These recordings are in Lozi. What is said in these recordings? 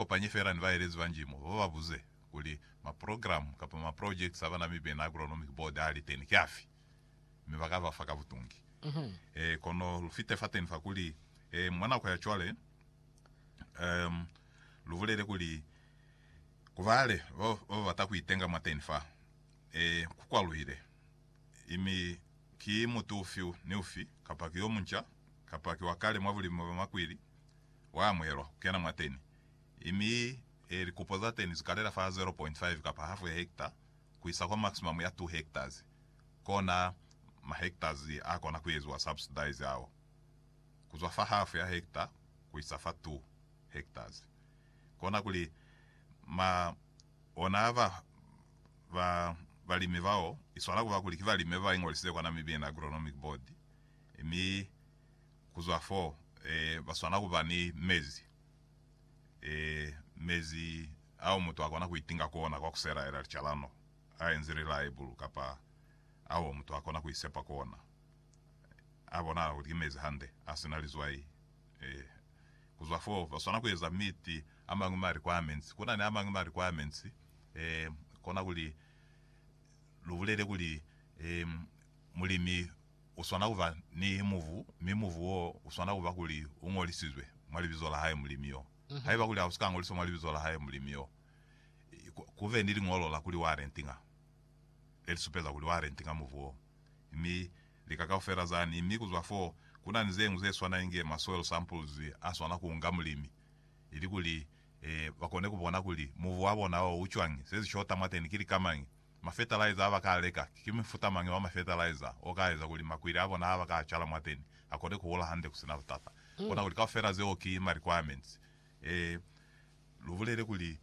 kopanye fela ni baelezi ba njimo ba ba buze kuli maprogramu kapa maprojekiti a ba Namibian Agronomic Board a li teni ki afi, mi ba ka ba fa ka butungi. E, kono lu fite fateni fa kuli, e, mwa nako ya cwale, um, lu bulele kuli, ku bale ba ba bata ku itenga mwateni fa, e, ku kwaluhile. I mi ki mutu ufi ni ufi, kapa ki yo munca, kapa ki wa kale mwa bulimi bwa makwili, Wa amuhelwa ku kena mwateni, mi e likupo za teni zu kalela fa 0.5 kapa hafu ya hekta ku isa kwa maximum ya 2 hektas. Kona ma hektas a kona ku eziwa subsidize ao, ku zwa fa hafu ya hekta ku isa fa 2 hektas. Kona kuli ma ona ba ba balimi bao i swana kuba kuli ki balimi ba ba ingolisize kwa Namibian Agronomic Board, mi. Ku zwa f'o, ba swana ku ba ni mezi, mezi ao mutu a kona ku itinga ku ona kwa ku selaela licalano a enzi lilaibulu kapa ao mutu a kona ku isepa ku ona a bonahala kuli ki mezi hande, a si na lizwai. Ku zwa f'o, ba swana ku eza miti a mañwi maliko a menzi. Ku na ni a mañwi maliko a menzi, konakuli lu bulele kuli mulimi u swana ku ba ni mubu, mi mubu woo u swana ku ba kuli u ñolisizwe mwa libizo la hae Mulimi yo. Haiba kuli ha u si ka ñoliswa mwa libizo la hae Mulimi yo, ku be ni liñolo la kuli wa rentinga, le li supeza kuli wa rentinga mubu woo, mi lika kaufela za ni. Mi ku zwa foo, ku na ni ze ñwi ze swana inge ma soil samples a swana ku nga mulimi, ili kuli ba kone ku bona kuli mubu wa bona woo u cwañi, se si shota mwateni ki lika mañi, Mafetalaiza aba ka leka, ki mufuta mañi wa mafetalaiza o ka eza kuli makwili a bona aba ka cala mwateni a kone ku hola hande ku sina butata? Bona kuli kaufela zeo ki ma requirements. Ee, lu bulele kuli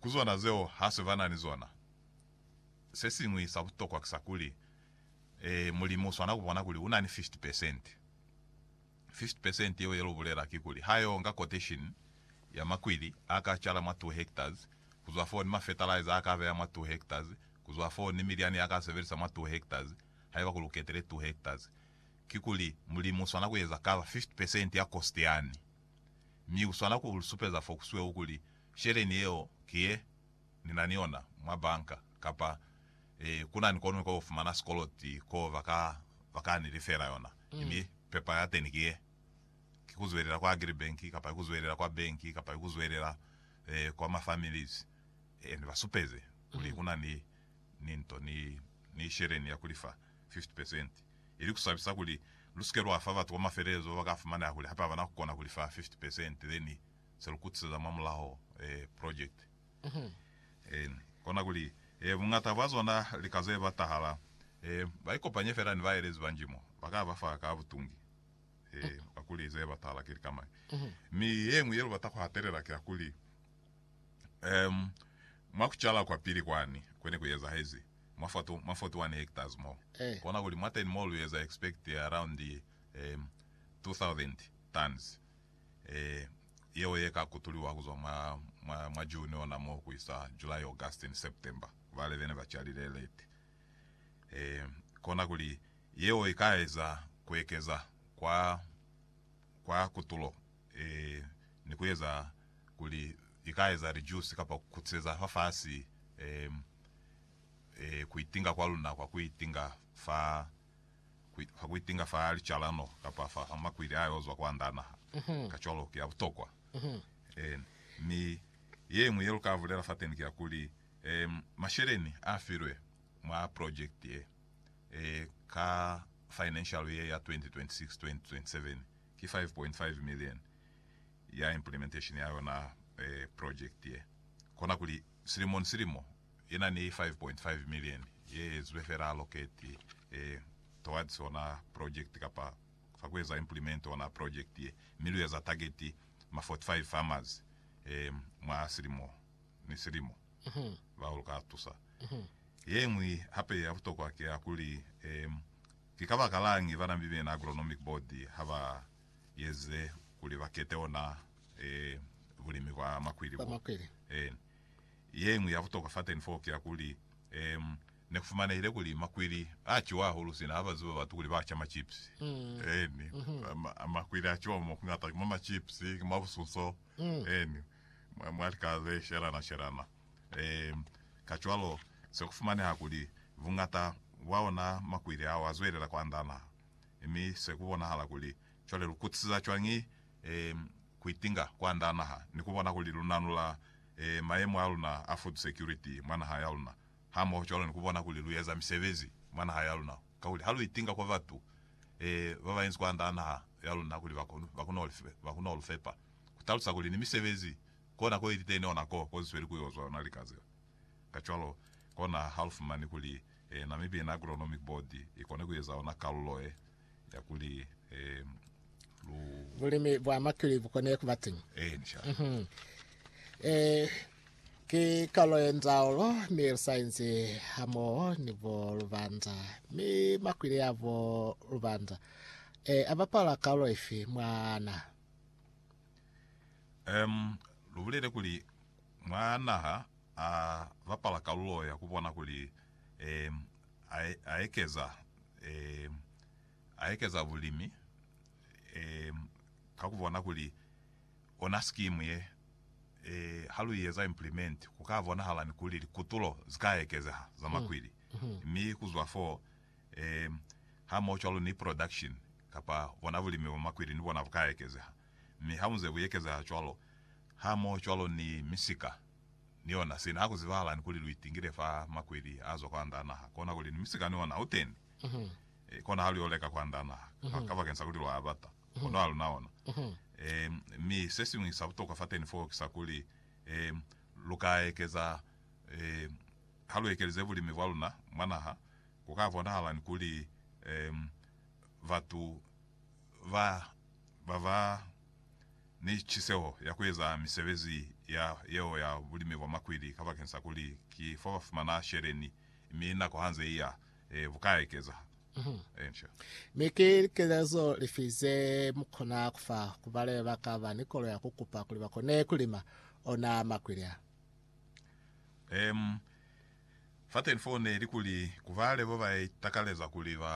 ku zona zeo ha se ba na ni zona. Se siñwi sa butokwa ki sa kuli, ee, mulimi u swana ku bona kuli u na ni 50 peresente. 50% yeo ye lu bulela kikuli ha yo nga quotation ya makwili a ka cala mwa 2 hectares ku zwa foo ni ma fertilizer a ka beya mwa 2 hectares ku zwa foo ni milyani ya ka sebelisa mwa 2 hectares haiba ku lu ketile 2 hectares. Kikuli, Mulimu u swana ku eza cover 50% ya cost yani, mi u swana ku lu supeza fo ku sweu kuli sheleni yeo ki ye ni na ni yona mwa banka, kapa e, ku na ni ko luñwi ko lu fumana sikoloti ko ba ka, ba ka ni lifela yona. Mi pepa ya teni ki ye, ki ku zwelela kwa Agribank, kapa ki ku zwelela kwa banki, kapa ki ku zwelela e, kwa ma families. E, ni ba supeze kuli ku na ni, ni nto, ni, ni sheleni ya ku li fa 50 percent. Ili ku sabisa kuli lu si ke lwa fa batu kwa mafelelezo ba ka fumaneha kuli hape ha ba na ku kona ku li fa 50 percent, then se lu kutiselela mwa mulaho eh, project en, kona kuli eh, bungata bwa zona lika ze ba tahala eh, ba ikopanye fela ni baelezi ba njimo, ba ka ba fa ka butungi eh, ka kuli ze ba tahala ki lika mañi. Mi yeñwi ye lu bata ku hatelela ki ya kuli, em, mwa ku cala kwa pili kwani kwe ne ku ezahezi mwa 40, mwa 41 hectares mo, kona kuli mwateni mo lu eza expect around em, 2000 tons. yeo ye ka kutuliwa ku zwa mwa June ona mo ku isa July, August ni September, ku bale be ne ba calile late. Kona kuli yeo i ka eza ku ekeza kwa kutulo ni ku eza kuli i ka eza lijusi kapa ku kutiseza fafasi ku itinga kwa luna kwa ku itinga fa ha ku itinga fa licalano kapa fa ha makwili a yo zwa kwa nda naha. Kacwalo, ki ya butokwa. Eeni. Mi ye ñwi ye lu ka bulela fateni ki ya kuli, um, masheleni a filwe mwa project ye, e, ka financial year ya 2026-2027, ki five point five million ya implementation ya yona, e, project ye. Kona kuli, silimo ni silimo, Yena ni 5.5 million ye ezwe fela allocate towards ona project kapa fa ku eza implement ona project ye, mi lu eza target ma 45 farmers mwa silimo ni silimo bao lu ka tusa. Ye ñwi hape ya butokwa ki ya kuli, ki kabakalañi bana Mibeni Agronomic Board ha ba eze kuli ba kete ona bulimi bwa makwili bo? Yeñwi ya butokwa fateni foo ki ya kuli, um, ne ku fumanehile kuli makwili a ciwa hahulu sina ha ba ziba batu kuli ba ca ma chips. Eeni. Ma, makwili a ciwa mo kuñata ki mwa ma chips, ki mwa busunso, eeni, mwa, mwa lika ze shelana-shelana. Um, kacwalo, se ku fumaneha kuli buñata bwa ona makwili ao a zwelela ku andana. Mi se ku bonahala kuli, cwale lu kutisiza cwañi, um, kuitinga kwanda naha ni kubona kuli lunanula mayemo aluna a food security mwa naha yaluna, hamoho cwalo ni kubona kuli lueza misebezi mwa naha yaluna, kakuli ha luitinga kwa batu babañi kwanda naha yaluna kuli bakone kulufepa, kutalusa kuli ni misebezi kona ko iliteni ona ko kozisweli kuyozwa yona lika zeo. Kacwalo, kona halufumani kuli Namibian Agronomic Board ikone kueza ona kalulo ye ya kuli um lu bulimi bwa makili bu kone ku ba teñi eh ni shaka mm-hmm. eh ke kalo ye nzaolo mi re saense ha mo ni bo lubanda mi makwile ya bo lubanda eh a bapala kalo efe mwana um lu bulele kuli mwana ha a bapala kalulo ya ku bona kuli a ekeza a ekeza bulimi ka ku bona kuli ona scheme ye ha lu i eza implement ku ka bonahala ni kuli likutulo zi ka ekezeha za makwili mi ku zwa foo hamoho cwalo ni production kapa bona bulimi bwa makwili ni bona bu ka ekezeha. Mi ha muze ku ekezeha cwalo, hamohocwalo ni misika, ni yona, sina ku zibahalani kuli lu itingile fa makweli a zwa kwanda naha, kona kuli ni misika ni ona uteni, e, kona ha lu yo leka kwanda naha, ka, kabakeni sa kuli lwa bata, kono ha luna ona. E, mi sesiñwi sa butokwa fateni foo ki sa kuli, e, lu ka ekeza, e, ha lu ekelize bulimi bwa luna mwa naha, ku ka bonahalani kuli, e, batu ba ba ba ni ciseho ya ku eza misebezi ya yeo ya bulimi bwa makwili kabakeng sa kuli ki fo ba fumana sheleni, mi nako ha nze i ya, e, bu ka ekeza. Inc. Mi ki likelezo lifi ze mu kona ku fa ku bale ba ka ba ni kolo ya ku kupa kuli ba kone ku lima ona makwili a? Em, Fateni foo ne li kuli ku bale ba ba itakaleza kuli ba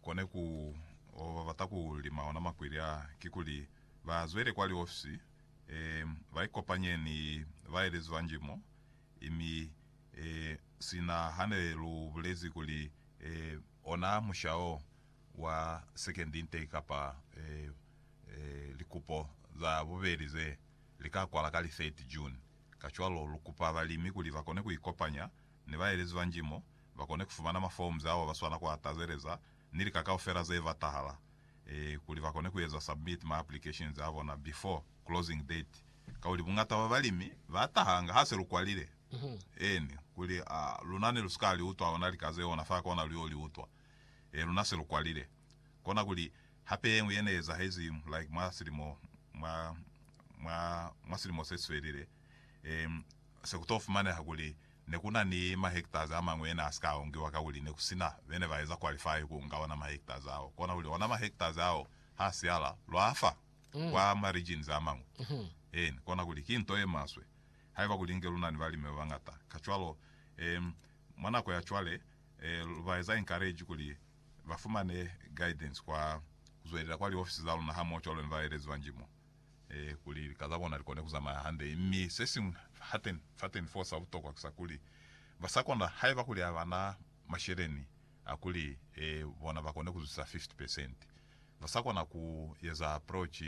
kone ku oba ba bata ku lima ona makwili a, kikuli ba zwele kwa liofisi, e, ba ikopanye ni baelezi ba njimo, i mi, e, sina hane lu bulezi kuli, e, ona musha o wa sekendi nte kapa, e, e, likupo za bubeli ze li ka kwala ka li 30 June. Kacwalo, lu kupa balimi kuli ba kone ku ikopanya ni baelezi ba njimo, ba kone ku fumana maforms ao ba swana ku a tazeleza, ni lika kaufela ze batahala, eeh, kuli ba kone ku eza submit ma applications a bona before closing date. Kakuli bungata bwa balimi ba tahanga ha se lu kwalile, eeni, kuli, a, luna ne lu si ka li utwa ona lika zeo ona fa kona lu yo li utwa, eeh, luna se lu kwalile. Kona kuli, hape yeñwi yene ezahezi like mwa silimo, mwa, mwa, mwa silimo seswelile, e, sekuto fumaneha kuli nekuna ni mahektazi amañwi yene asika aongiwa kakuli nekusina bene baeza qualify kuunga ona mahektazi ao. Kona kuli, ona mahektazi ao ha siala, lwa fa kwa ma regions amañwi. Eeni. Kona kuli, ki nto yemaswe haiba kuli inge luna ni balimi babañata. Kacwalo, e, mwa nako ya cwale, e, lubaeza encourage kuli ba fumane guidance kwa ku zwelela kwa liofisi za luna hamoho cwalo ni baelezi ba njimo, eh, kuli lika za bona li kone ku zamaya hande. Mi se siñwi hateni, fateni foo sa butokwa ki sa kuli, ba sa kona, haiba kuli ha ba na masheleni a kuli, eh, bona ba kone ku zwisa 50 percent, ba sa kona ku eza approach,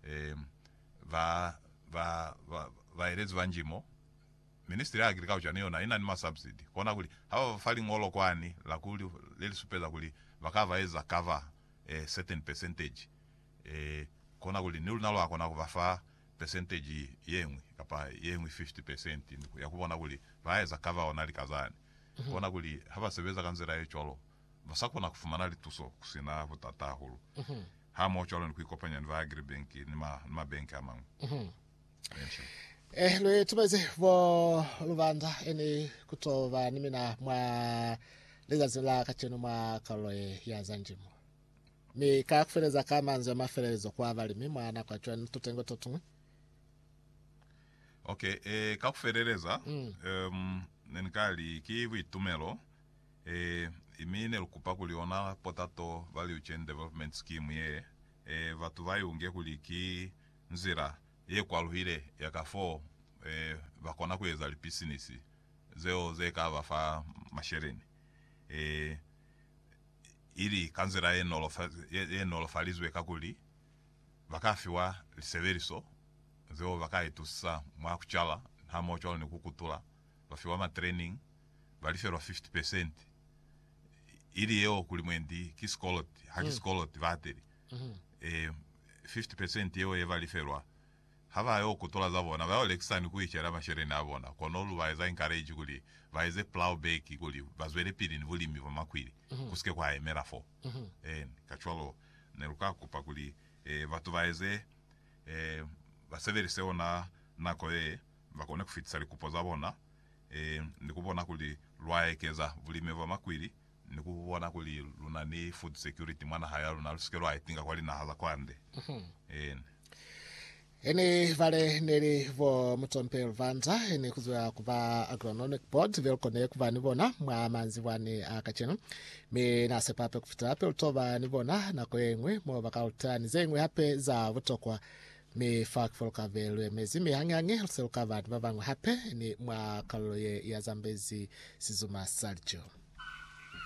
eh, ba, ba, ba, baelezi ba njimo, Ministry ya Agriculture ni yona ina ni ma subsidy, kona kuli ha ba fa liñolo kwani la ku le li supeza kuli ba ka ba eza cover a certain percentage, kona kuli ni luna lwa kona ku ba fa percentage yeñwi kapa yeñwi 50 percent ya ku bona kuli ba eza cover ona lika zani. Kona kuli ha ba sebeza ka nzila ye cwalo, ba sa kona ku fumana lituso ku si na butata hahulu, hamoho cwalo ni ku ikopanya ni ba Agribank ni ma bank a mañwi. Eh, lwe tumezi bo lubanda eni kutoba ni mina mwa lizazi la kacenu mwa kalulo ye ya za njimo. Mi ka kufeleza ka manzwi a mafelelezo kwa balimi mwa nako ya cwani tutengo to tungwi. Okay, eh, ka kufeleleza, Mm. um, ne ni ka li ki buitumelo, eh, imi ne lu kupa kuli ona Potato Value Chain Development Scheme ye, eh, batu ba i unge kuli ki Nzila ye kwaluhile ya ka fo ba kona ku eza lipisinisi zeo ze ka ba fa masheleni i li ka nzila ye nolofalizwe kakuli ba ka fiwa lisebeliso zeo ba ka itusisa mwa ku cala hamoho cwalo ni ku kutula, ba fiwa matraining, ba lifelwa 50 pesenti ili yeo kuli mwendi ki sikoloti. Ha ki sikoloti, bahateli. 50 percent yeo ye ba lifelwa, ha ba yo ku tola za bona, ba yo lekisa ni ku icela masheleni a bona. Kono lu ba eza encourage kuli ba eze plough back kuli ba zwelepili ni bulimi bwa makwili, ku si ke kwa yemela fo. Kacwalo ne lu ka kupa kuli batu ba eze, ba sebelise yona nako ye, ba kone ku fitisa likupo za bona, ni ku bona kuli lwa ekeza bulimi bwa makwili ni ku bona kuli lu na ni food security mwa naha ya luna, lu si ke lwa itinga kwa linaha za kwande. Ene. Ene ibale ne li bo Mutsompe Luvandza, ene ku zwa ku ba Agronomic Board, be lu kone ku ba ni bona mwa manzibwani a kacenu. Mi na sepa hape ku fitela hape lu to ba ni bona nako ye ñwi mo ba ka lu tea ni ze ñwi hape za butokwa Mi fa kufo lu ka be lu emezi, mi hañihañi lu se lu ka ba ni ba bañwi hape ni mwa kalulo ye ya zambezi sizuma sa lico.